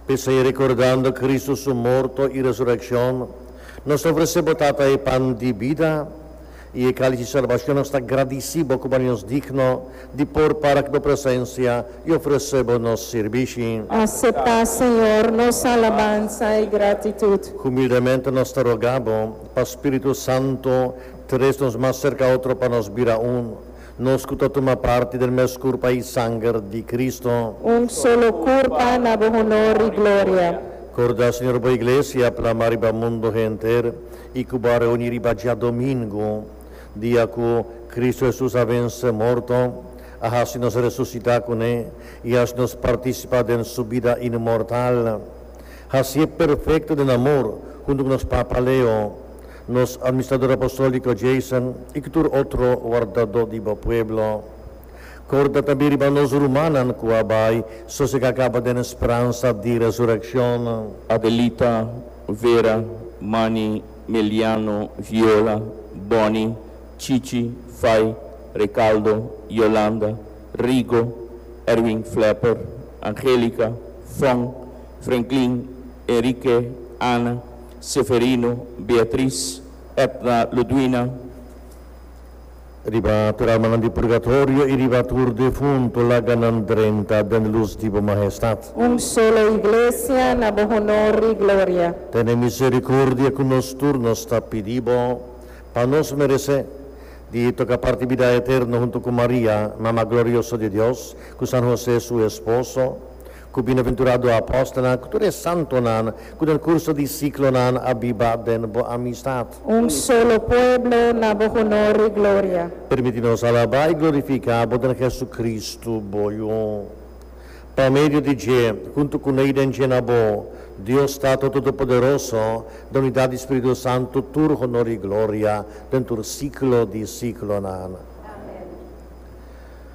P'esei, rekordando Kristu su morto i resurekshon, nos ta ofresé bo, Tata, e pan di bida i e kális di salbashon. Nos ta gradisí bo ku bo hasi nos digno di por para ku bo presensia i ofresé bo nos sirbishi. Aseptá, Señor, nos alabansa i gratitut. Humildemente nos ta rogá bo pa spiritu santu tres nos mas serka otro pa nos bira un. Nos cu ta tuma parti den mes curpa y sanger di Cristo. Un solo curpa na bo honor y gloria. Corda, Señor, bo Iglesia plama riba mundo henter y cu bo a reuni riba djadomingo, dia cu Cristo Jesus a vence morto, a haci nos resucita cu ne y haci nos participa den su bida inmortal. Hacié perfecto den amor hunto cu nos Papa Leo. Nos Administrador Apostolico Jason y cu tur otro wardado di bo pueblo. Corda tambe riba nos rumannan cu a bay sosega caba den e spransa di resureccion. Adelita, Vera, Manny, Meliano, Viola, Bonny, Chichi, Fay, Recaldo, Yolanda, Rigo, Erwin Flepper, Angelica, Fong, Frenklin, Enrique, Ana, Seferino, Beatriz, Edna, Ludwina. Riba tur almanan di purgatorio y riba tur defunto laga nan drenta den luz di bo Mahestad. Un solo Iglesia na bo honor y gloria. Tene misericordia cu nos tur, nos ta pidi bo, pa nos merece di toca parti bida eterno hunto cu Maria, Mama glorioso di Dios, cu San Jose su esposo, Ku bienaventurado apòstelnan, ku tur e santonan ku den kurso di siklonan a biba den bo amistat. Un solo pueblo na bo honor i gloria. Permití nos alabá i glorifiká bo den Hesukristu, bo Yu. Pa medio di dje, huntu ku n'ei den dje na bo, Dios Tatu Todopoderoso, den unidat di spiritu santu, tur honor i gloria den tur siklo di siklonan. Amèn.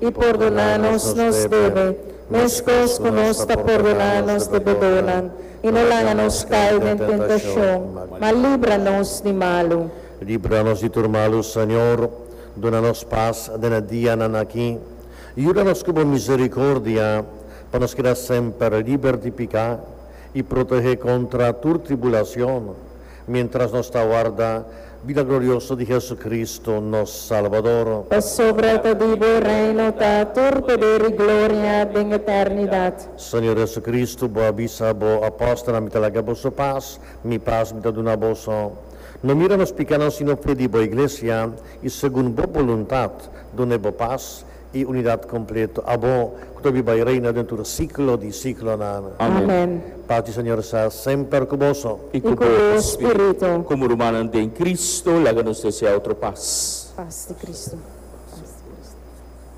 i pordona nos nos debe, meskos ku nos ta pordona nos debedónan, i no laga nos kai den tentashon, ma libra nos di malu. Libra nos di tur malu, Señor, duna nos pas den e dianan aki. Yuda nos ku bo miserikordia, pa nos keda semper liber di piká i protehé kontra tur tribulashon, Mientras nos ta warda bida glorioso di Jesucristo, nos Salbador. Pasobra ta di bo Reino ta tur poder i gloria den eternidad. Señor Jesucristo, bo a bisa bo apòstelnan, Mi ta laga boso pas, mi pas mi ta duna boso. No mira nos pikánan, sino fe di bo Iglesia, i segun bo boluntad, dun'é bo pas, E unidad completo abo cu ta bi bay reina den tur ciclo di ciclonan. Amen. Paz di Señor sa semper cu boso. I cu bo spirito. Como rumannan den Cristo, laga nos desea otro paz. Paz di Cristo.